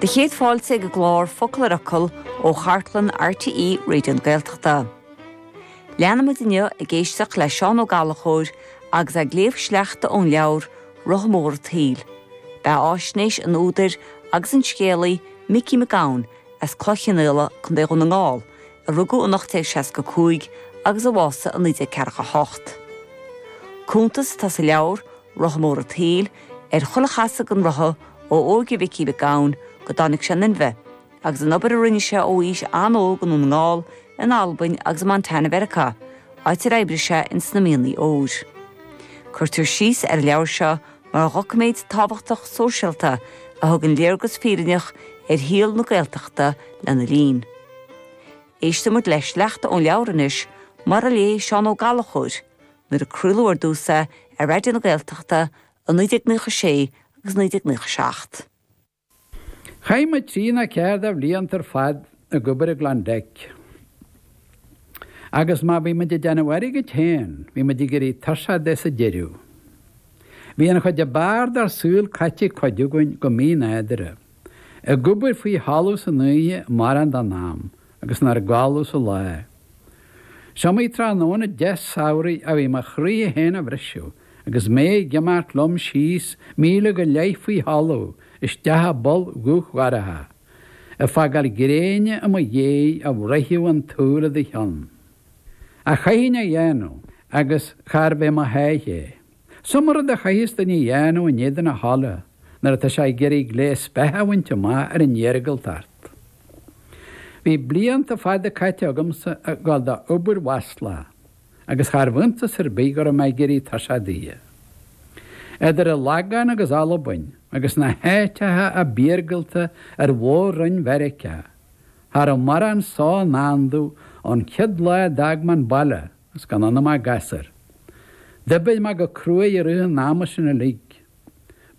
Do chéad fáilte ag an gclár Focal ar Fhocal ó chartlann RTÉ Raidió na Gaeltachta. Leanfaimid inniu ag éisteacht le Seán Ó Gallachóir agus é ag léamh sleachta ón leabhar 'Rotha Mór an tSaoil'. Beathaisnéis an údair agus an scéalaí Micí Mac Gabhann as Cloich Chionnaola, Co. Dhún na nGall, a rugadh in 1865 agus a bhásaigh in 1948. Cuntas atá sa leabhar Rotha Mór an tSaoil, ar chuile chasadh den rotha ó óige Mhicí Mhic Gabhann go dtáinig sé in inmhe, agus an obair a rinne sé ó aois an-óg i nDún na nGall, in Albain agus i Montana Mheiriceá, áit ar oibrigh sé in sna mianaigh óir. Cuirtear síos ar an leabhar seo mar dhoiciméad tábhachtach sóisialta a thugann léargas fírinneach ar shaol na Gaeltachta lena linn. Éistfidh muid le sleachta ón leabhar anois, mar a léigh Seán Ó Gallachóir, Nuair a craoladh ar dtús é ar Raidió na Gaeltachta i 1996 agus 1997. Chaith muid trí nó ceathair de bhlianta ar fad ag obair i gKlondike agus má bhí muid ag déanamh airgid féin, bhí muid ag éirí tuirseach de sa deireadh. Bhí an chuid ab fhearr dár saol caite ag cuid againn go mínádúrtha. Ag obair faoi thalamh san oíche mórán den am agus inár gcodladh sa lá. Is iomaí tráthnóna deas samhraidh a bhí mo chroí féin á bhriseadh agus mé ag imeacht liom síos míle go leith faoi thalamh isteach i bpoll dhubh dhorcha, ag fágáil gréine i mo dhiaidh a bhruithfeadh an tsúil i do cheann. Ach chaithfinn é a dhéanamh agus charbh é mo sháith é. Is iomaí rud a chaitheas duine a dhéanamh in éadan a thola nuair atá sé ag iarraidh gléas beatha a bhaint amach ar an iargúltacht. Bhí blianta fada caite agamsa ag gabháil d'obair mhaslach agus charbh iontas ar bith go raibh mé ag éirí tuirseach di. Idir an Lagán agus Albain agus na háiteacha ab iargúlta ar mhór-roinn Mheiriceá, cha raibh mórán só i ndán domh ón chéad lá a d'fhág mé an baile. Is gan ionam ach gasúr. D'oibir mé go cruaidh i rith an ama sin uilig.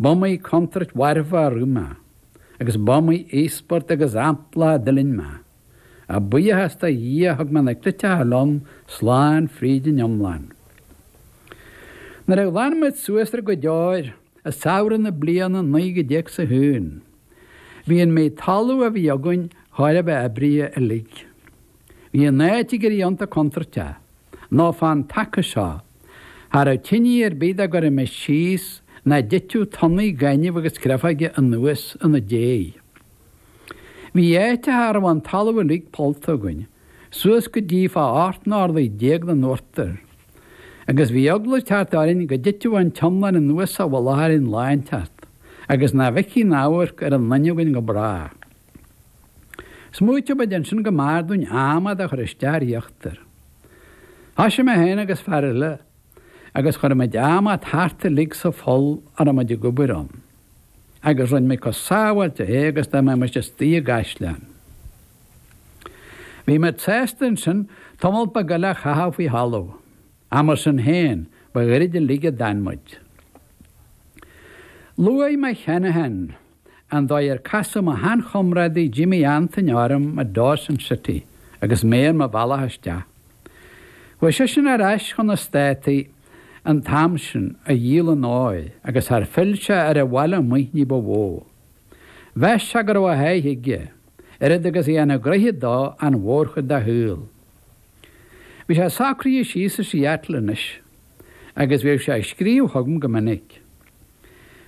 B'iomaí contúirt mharfa a rith mé, agus b'iomaí íospairt agus ampla a d'fhuiling mé. Ach buíochas do Dhia thug mé na cleiteacha liom slán fríd an iomlán. Nuair a ghlan muid suas ar an gcuid óir, i samhradh na bliana 1901, bhí an méid talún a bhí againn chóir a bheith oibrithe uilig. Bhí an áit ag éirí iontach contúirteach, nó fán taca seo, cha raibh tinidh ar bith dá gcuirimis síos nach dtiteadh tonnaí gainimh agus créafóige anuas ina déidh. Bhí áiteacha a raibh an talamh uilig pollta againn, suas go dtí fá ocht n-orlaí déag den uachtar, agus bhí eagla cheart orainn go dtitfeadh an t-iomlán anuas sa mhullach orainn lá inteacht, agus nach bhfeicfí aon amharc ar aon duine againn go bráth. Smaoitigh muid ansin go mb'fhearr dúinn adhmad a chur isteach ar íochtar. Thoisigh mé féin agus fear eile agus chuir muid adhmad thart uilig sa pholl a raibh muid ag obair ann, agus rinn muid chomh sábháilte é agus dá mbeimis istigh i gcaisleán. Bhí muid sásta ansin tamall beag eile a chaitheamh faoi thalamh, ach mar sin féin, ba ghairid uilig a d'fhan muid. Luaigh mé cheana féin. an dóigh ar casadh mo shean-chomrádaí Jimmy Antaine orm i Dawson City agus mé ar mo bhealach isteach. Chuaigh seisean ar ais chun na Státaí an t-am sin, a dhíol an óir agus char phill sé ar an bhaile amuigh ní ba mhó. Mheas sé go raibh a sháith aige, oiread agus a dhéanfadh gnoithe dó an mhórchuid dá shaol. Bhí sé socraithe síos i Seattle anois agus bhíodh sé ag scríobh chugam go minic.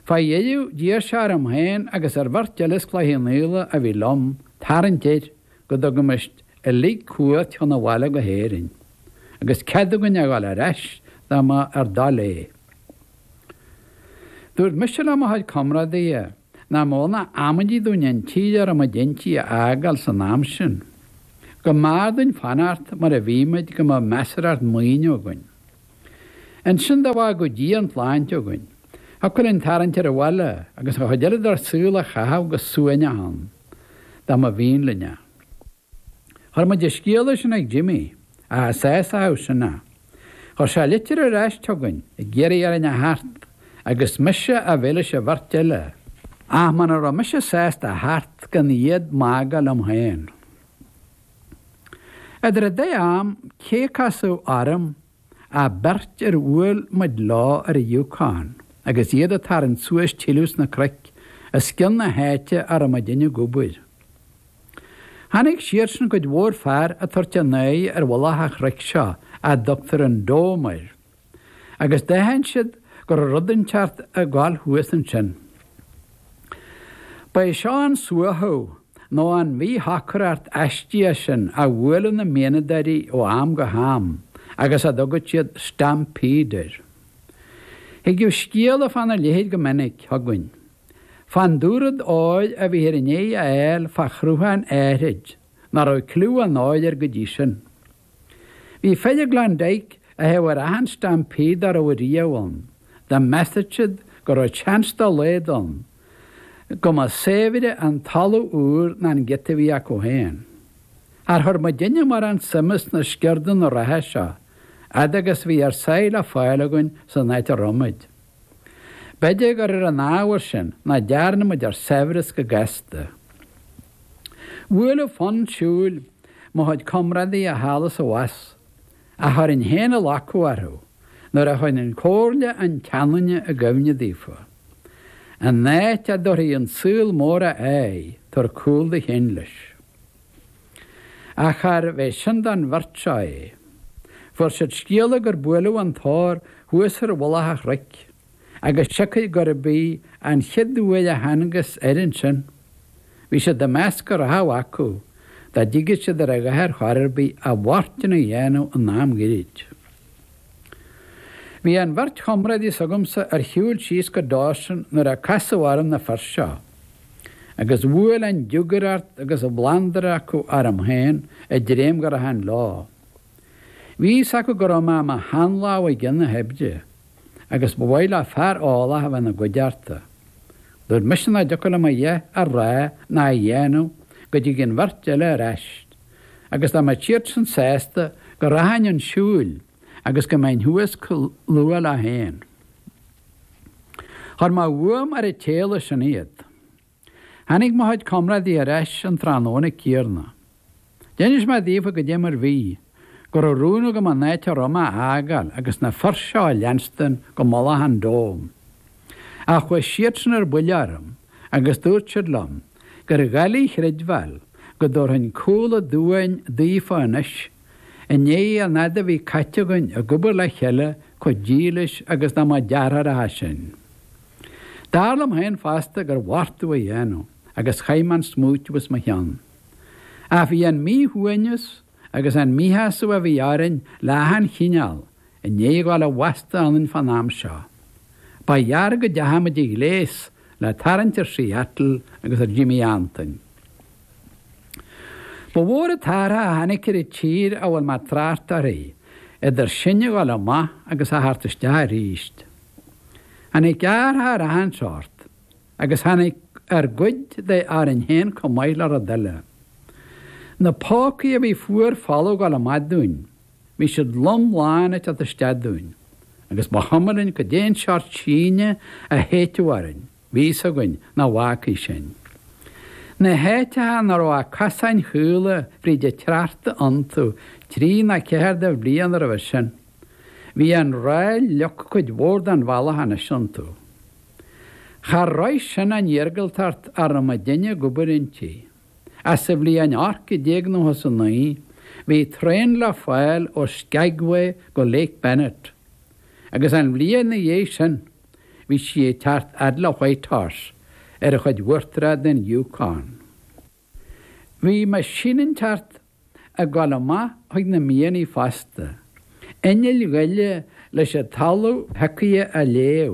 Fá dheireadh, d'iarr sé orm féin agus ar bheirt eile as Cloich Cheann Fhaola a bhí liom tarraingt air go dtugaimis uilig cuairt chun an bhaile go hÉirinn, agus cead againn a ghabháil ar ais dá mba ár dtoil é. Dúirt mise le mo chuid comrádaithe nach mó ná amaidí dúinn an tír a raibh muid inti a fhágáil san am sin. Go mb'fhearr dúinn fanacht mar a bhí muid go mbeadh measarthacht maoine againn. Ansin dá bhfágadh Dia an tsláinte againn, thiocfadh linn tarraingt ar an bhaile agus an chuid eile dár saol a chaitheamh go suaimhneach ann, dá mba mhian linn é. Chuir muid an scéala sin ag Jimmy, ach cha sásódh sin é. Chuir sé litir ar ais chugainn ag iarraidh orainn a theacht agus mise a bheith leis an bheirt eile, ach muna raibh mise sásta a theacht gan iad bacadh liom féin. Idir an dá am, cé casadh orm ach beirt ar bhuail muid leo ar an Yukon agus iad a' tarraingt suas tuilleadh sna cnoic os cionn na háite a raibh muidinne ag obair. Chonaic siadsan cuid mhór fear a' tabhairt a n-aghaidh ar mhullach a' chnoic seo a dtugtar an Dome air. agus d'aithin siad go raibh rud inteacht ag gabháil thuas ansin. Ba é seo an suaitheadh nó an mhíshocracht aistíoch sin a bhuaileadh na mianadóirí ó am go ham agus a dtugadh siad 'stampede' air. Thigeadh scéala fána leithéid go minic chugainn, fán dúrud óir a bhíthear i ndéidh a fháil fá shruthán áithrid ná raibh cliú ná cáil air go dtí sin. Bhí fir i Klondike a théadh ar achan stampede dá raibh riamh ann. Dá measadh siad go raibh chance dá laghad ann go mba saibhre an talamh úr ná an giota a bhí acu féin. Char chuir muidinne mórán suime sna sciurdanna reatha seo, fhad agus a bhí ár sáith le fáil againn san áit a raibh muid? B'fhéidir gur ar an ábhar sin ná dearna muid ár saibhreas go gasta. Bhuaileadh fonn siúil mo chuid comrádaí thall is abhus, ach chuirinn féin a locadh orthu nuair a chuirinn comhairle an tseanduine i gcuimhne daofa. An áit a dtabharfaidh an saol mór a aghaidh, tabhair cúl do chinn leis. Ach charbh é sin don bheirt seo é? Fuair siad scéala gur buaileadh an t-ór thuas ar mhullach a' chnoic, agus siocair gurb í an chéad uair a thángthas air ansin. Bhí siad ag meas go rachadh acu, dá dtigeadh siad ar a dhath ar chor ar bith, a bhfortún a dhéanamh in am gairid. Bhí an bheirt chomrádaí s'agamsa ar shiúl síos go Dawson nuair a casadh orm na fir seo. Agus bhuail an diúgaireacht agus an bhlandar acu orm féin ag dréim go rachainn leo. Bhí fhios acu go raibh mé i mo shean-lámh i gcionn na hoibre, agus ba mhaith leo fear eolach a bheith ina gcuideachta. Dúirt mise nach dtiocfadh liom a dhath a rá ná a dhéanamh go dtigeadh an bheirt eile ar aist, agus dá mbeadh siadsan sásta go rachfainn 'un siúil, agus go mbeinn thuas chomh luath leo féin. Chuir mé uaim ar an tséala sin iad. Tháinig mo chuid comrádaí ar ais an tráthnóna céanna. D'inis mé daofa goidé mar bhí, go raibh rún agam an áit a raibh mé a fhágáil agus na fir seo a leanstan go mullach an Dome. Ach chuaigh siadsan ar buile orm agus dúirt siad liom gur dhoiligh a chreidbheáil go dtabharfainn cúl a' doirn daofa anois. I ndiaidh an fhaid a bhí caite againn ag obair le chéile chomh dílis agus dá mba deartháireacha sinn. Dar liom féin fosta gur mhór domh a dhéanamh agus chaith mé an smúit as mo chionn. Ach bhí an míshuaimhneas agus an míshásamh a bhí ag roinn le achan chineál i ndiaidh gabháil i bhfastó ionainn fán am seo. Ba ghearr go dteachaigh muid i ngléas le tarraingt ar Seattle agus ar Jimmy Antain. Ba mhór an t-athrach a tháinig ar an tír a bhfuil mé ag trácht uirthi, idir sinn a dhul amach agus a theacht isteach arís. Tháinig athrach ar achan seort, agus tháinig ár gcuid de orainn féin chomh maith le rud eile. Na pócaí a bhí fuar folamh ag dul amach dúinn, bhí siad lom lán ag teacht isteach dúinn, agus ba chuma linn cad é an seort síne a shéidfeadh orainn. bhí fhios againn nach bhfaca sinn. Na háiteacha nach raibh ach cosáin chaola fríd an tsneachta iontu trí nó ceathair de bhlianta roimhe sin. Bhí an ráil leagtha cuid mhór den bhealach anois iontu. Char shroich sin an iargúltacht a raibh muidinne ag obair inti. Ach sa bhliain 1899 bhí traein le fáil ó Skagway go Lake Bennett. Agus an bhliain ina dhiaidh sin. Bhí sí ag teacht fhad le White Horse ar an chuid uachtarach den Yukon. Bhí meaisínteacht ag dul amach chuig na mianaigh fosta. Innill ghaile leis an talamh shiocaithe a leá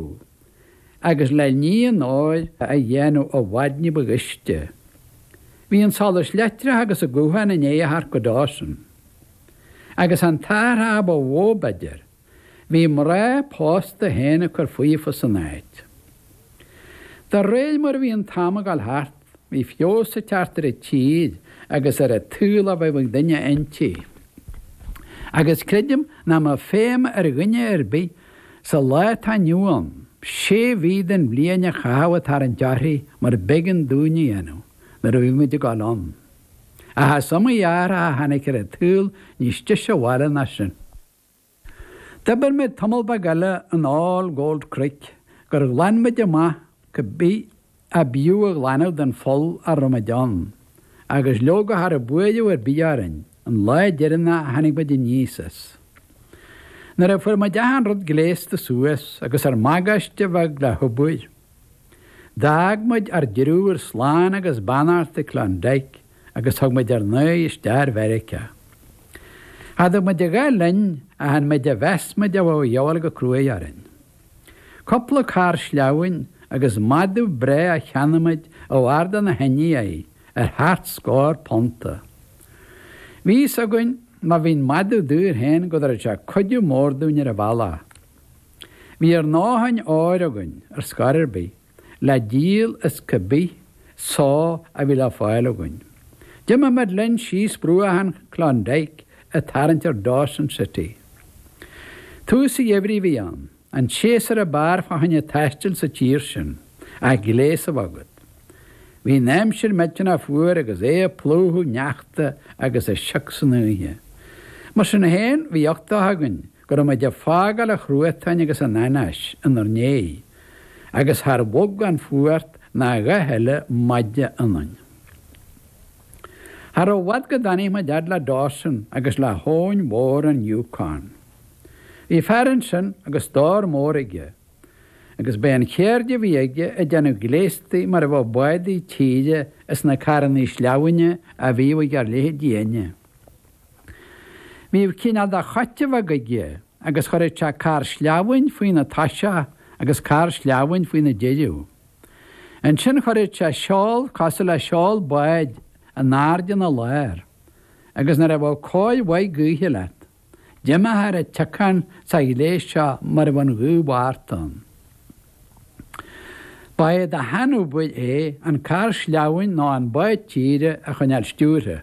agus le ní an óir a dhéanamh i bhfad ní ba ghaiste. Bhí an solas leictreach agus an guthán i ndiaidh a theacht go Dawson. Agus an t-athrach ba mhó, b'fhéidir. Bhí mná pósta féin ag cur faofa san áit. De réir mar a bhí an t-am ag dul thart, bhí feabhas ag teacht ar an tír agus ar an tsaol a bheadh ag duine inti. Agus creidim nach mbeadh feidhm ar dhuine ar bith sa lá atá inniu ann sé mhí den bhliain a chaitheamh ag tarraingt uirthi mar b'éigean dúinn a dhéanamh nuair a bhí muid ag dul ann. Ach is iomaí athrach a tháinig ar an tsaol níos deise do bhaile ná sin. D'oibir mé tamall beag eile in All Gold Creek gur ghlan muid amach cibé ab fhiú a ghlanadh den pholl a raibh muid ann, agus leoga cha raibh buaireamh ar bith orainn an lá deireanach a tháinig muid aníos as. Nuair a fuair muid achan rud gléasta suas agus ár mbagáiste bheag le hobair, d'fhág muid ár dtriúr slán agus beannacht ag Klondike, agus thug muid ár n-aghaidh isteach ar Mheiriceá. Cha dtug muid a dhath linn ach an méid a mheas muid a bheadh a dhíobháil go cruaidh orainn. Cúpla carr sleamhain agus madadh breá a cheannaigh muid ó fhear de na hIndiaigh ar sheacht scór punta. Bhí fhios againn má bhí an madadh daor féin go dtabharfadh sé cuidiú mór dúinn ar an bhealach. Bhí ár ndóthain óir againn ar scor ar bith. le díol is cá bith só a bhí le fáil againn. D'imigh muid linn síos bruach an Klondike ag tarraingt ar Dawson City. Tús an gheimhridh a bhí ann, an séasúr ab fhearr fá choinne taistil sa tír sin, ach gléas a bheith agat. Bhí an aimsir millteanach fuar agus é ag plúchadh sneachta agus ag sioc san oíche. Mar sin féin, bhí uchtach againn Go raibh muid ag fágáil an chruatain agus an anáis inár ndiaidh agus char bhog an fuacht ná a dhath eile maide ionainn. Cha raibh i bhfad go dtáinig muid fhad le Dawson agus le habhainn mhór an Yukon. Bhí fear ansin agus stór mór aige, agus b'é an cheird a bhí aige ag déanamh gléastaí mar a bheadh bádaí tíre is na carrannaí sleamhaine a bhíodh ag ár leithéidinne. Bhíodh cineál de choite bheag aige agus chuirfeadh sé carr sleamhain faoina toiseach agus carr sleamhain faoina deireadh. Ansin chuirfeadh sé seol cosúil le seol báid in airde ina lár agus nuair a bheadh cóir mhaith gaoithe leat, d'imeofá ar an tsiocán sa ghléas seo mar a bheadh an ghaoth Mhárta ann. Ba é do sheanobair é an carr sleamhain nó an bád tíre a choinneáil stiúrtha.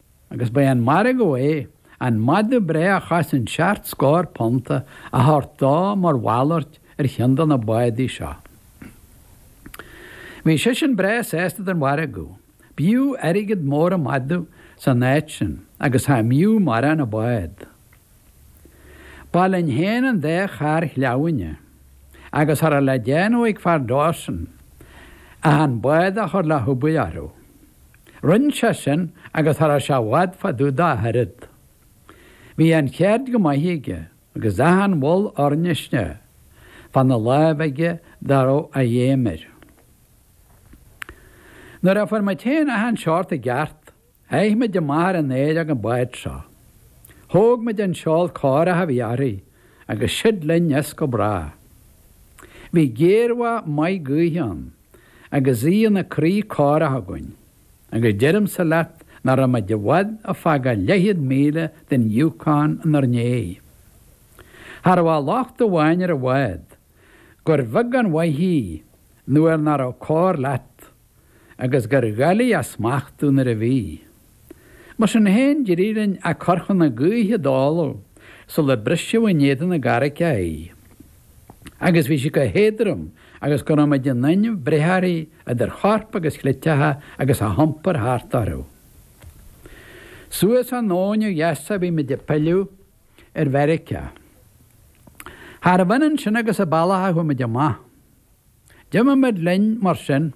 Agus ba é an margadh é, an madadh breá a chosain seacht scór punt a thabhairt dó mar mhalairt ar cheann de na bádaí seo. Bhí seisean breá sásta den mhargadh. B'fhiú airgead mór an madadh san áit sin agus cha mb'fhiú mórán an bád. Ba linn fhéin an dá charr shleamhaine, agus cha raibh le déanamh ag fear Dawson ach an bád a chur le hobair orthu. Rinne sé sin agus cha raibh sé i bhfad fá dtaobh de ach oiread. Bhí an cheird go maith aige agus achan bhall oirnéise fána láimh aige dá raibh a fheidhm air. Nuair a fuair muid féin achan seort i gceart, sháigh muid amach ar an oighreog an bád seo. Thóg muid an seol córach a bhí uirthi agus siúd linn as go bráth. Bhí géarbhach maith gaoithe ann. agus í ina croí córach againn, agus deirimse leat nach raibh muid i bhfad ag fágáil leathchéad míle den Yukon inár ndiaidh. Cha raibh ach locht amháin ar an bhád, gur bheag an mhaith í nuair nach raibh cóir leat, agus gur dhoiligh a smachtú nuair a bhí. Mar sin féin, d'éirigh linn a cur chun na gaoithe a dáileadh sular briseadh in éadan na gcarraigeacha í, agus bhí sí chomh héadrom agus go raibh muid in inmhe breith uirthi idir chorp agus chleiteacha agus a hiompar thart orthu. Suas an abhainn ó dheas a bhí muid ag pilleadh ar Mheiriceá. Charbh ionann sin agus an bealach a chuaigh muid amach. D'imigh muid linn, mar sin.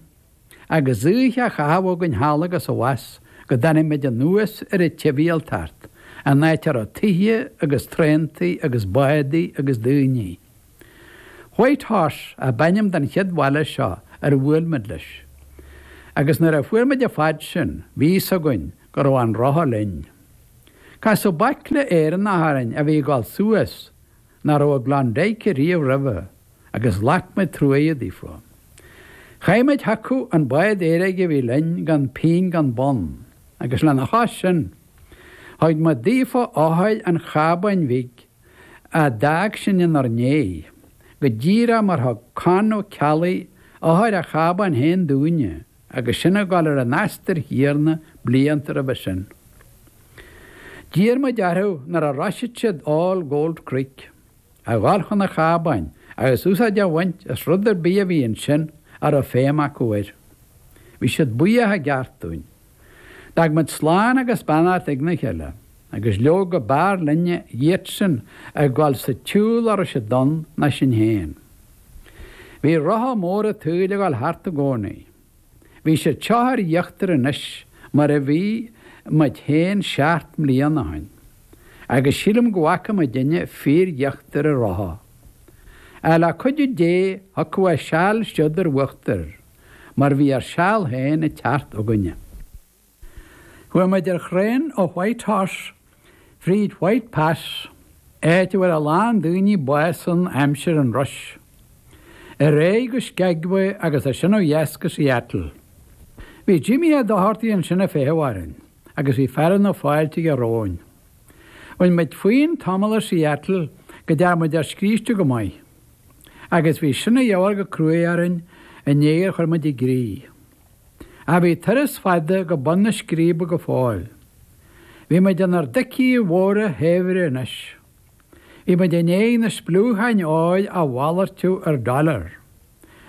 agus oíche a chaitheamh againn thall agus abhus go dtáinig muid anuas ar an tsibhialtacht, an áit a raibh tithe agus traentaí agus bádaí agus daoine. White Horse ab ainm don chéad bhaile seo ar bhuail muid leis, agus nuair a fuair muid a fad sin, bhí fhios againn go raibh an rotha linn. Casadh baicle Éireannach orainn a bhí ag dul suas nach raibh i gKlondike riamh roimhe, agus ghlac muid truaighe daofa. Chaith muid chucu an bád éadaigh a bhí linn gan pingin gan bonn, agus lena chois sin, thug muid daofa eochair an chábáin bhig a d'fhág sinn inár ndiaidh, go díreach mar thug Con Ó Ceallaigh eochair a chábáin féin dúinne agus sinn ag dul ar an aistear chéanna blianta roimhe sin. D'iarr muid orthu nuair a shroisfeadh siad All Gold Creek, a dhul chun an chábáin agus úsáid a bhaint as rud ar bith a bhí ansin a raibh feidhm acu air. Bhí siad buíoch i gceart dúinn. D'fhag muid slán agus beannacht ag na chéile. Agus leoga b'fhearr linne iadsan ag gabháil sa tsiúl ar ais a d'fhonn ná sinn féin. Bhí rotha mór an tsaoil ag gabháil thart i gcónaí. Bhí siad seo ar íochtar anois mar a bhí muid féin seacht mbliana ó shin. Agus sílim go bhfaca muidinne fíor-íochtar an rotha. Ach le cuidiú Dé thiocfadh a seal siúd ar uachtar mar bhí ár seal féin ag teacht againne. Chuaigh muid ar thraein ó Whitehorse fríd White Pass, áit a bhfuair a lán daoine bás in aimsir an rush, ar aghaidh go Skagway agus as sin ó dheas go Seattle. Bhí Jimmy Ó Dochartaigh ansin ag feitheamh orainn agus bhí fearadh na fáilte aige romhainn. Bhain muid fúinn tamall i Seattle go dtearn muid ár scríste go maith, agus bhí sin a dhíobháil go cruaidh orainn i ndiaidh ar chuir muid i gcrích. Ach bhí turas fada go bun na scríbe go fóill. Bhí muid inár dtoicí mhóra shaibhre anois. Bhí muid i ndiaidh na spliúcháin óir a mhalartú ar dollar.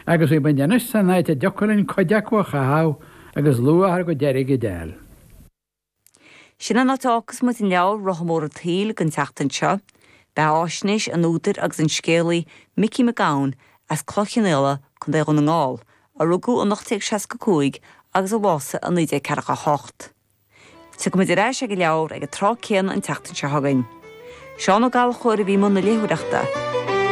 Agus bhí muid anois san áit a dtiocfadh linn cuid acu a chaitheamh agus luach ár gcuid airgid a d'fháil. Sin an áit a fhágfas muid an leabhar Rotha Mór an tSaoil don tseachtain seo. Beathaisnéis an údair agus an scéalaí Micí Mac Gabhann as Cloich Chionnaola, Co. Dhún na nGall, a rugadh in 1865 agus a bhásaigh i 1948. Tiocfaidh muid ar ais ag an leabhar ag an tráth céanna an tseachtain seo chugainn. Seán Ó Gallchóir a bhí i mbun na léitheoireachta.